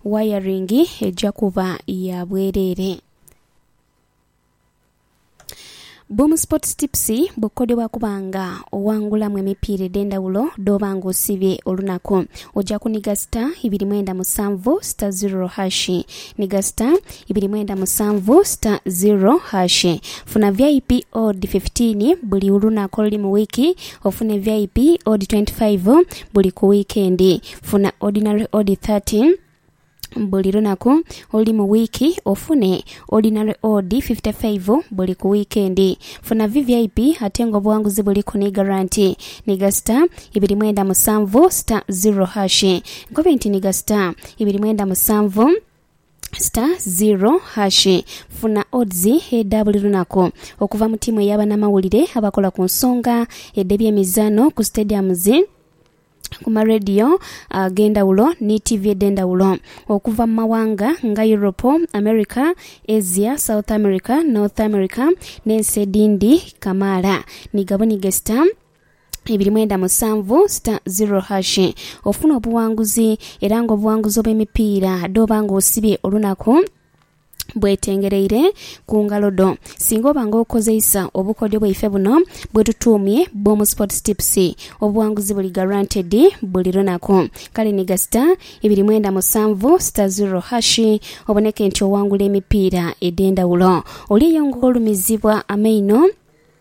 Wayaringi eja kuba ya bwereere. Boom Sports Tips bw'okukodebwa kuba nga owangulamu emipiira edh'endhawulo dh'oba nga osiibye olunaku. Oja kuniga sita ibiri mwenda musanvu sita ziroro hashi. Niga sita ibiri mwenda musanvu sita ziroro hashi. Funa vip odd fifteen buli olunaku oluli mu wiiki, ofune vip odd twenty five buli ku wiikendi. Funa Ordinary Ode 13 buli lunaku oluli mu wiiki ofune Ordinary Ode 55 buli ku wiikendi. Funa VVIP ate nga obughanguzi buliku ni garanti. Nhiga star ibiri mwenda musanvu star ziro hash. Nkobe nti nhiga star ibiri mwenda musanvu star ziro hash. Funa odds edha buli lunaku okuva mu tiimu eya banamawulire abakola ku nsonga edh'ebyemizaano ku stadiums. ku ma radio ag'endhawulo ni tiivi edh'endhawulo okuva mu mawanga nga Europe, America, Asia, South America, North America n'ensi edhindi kamaala ni gabu ni gesita ibiri mwenda musanvu sita ziro hashi ofune obuwanguzi era nga obuwanguzi obw'emipiira dh'oba nga osibye olunaku bwetengereire ku ngalo dho. Singa oba nga okozeisa obukodyo bwaife buno bwetutuumye Boom Sports Tips, obuwanguzi buli guaranteed buli lunaku. Kale ni gasita ibiri mwenda musanvu star zero hash oboneke nti owangula emipiira edhendhawulo. Oli eyo nga olumizibwa amaino?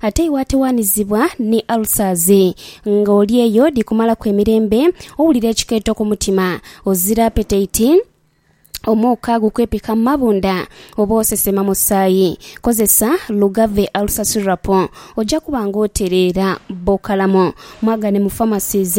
Ate iwe atighanizibwa ni ulcers, nga oli eyo dhi kumalaku emirembe, owulira ekikeeto ku mutima, ozira appetite, omuuka gukwepika mu mabundha, oba osesema musaayi, kozesa Lugave Ulcer Syrup oja kuba nga otereera. Bokalamu mwagane mu pharmacies.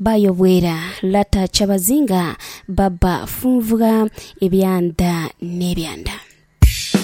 Bayobwera Lata Kyabazinga, Baba Funvugha, Ebyanda n'ebyanda.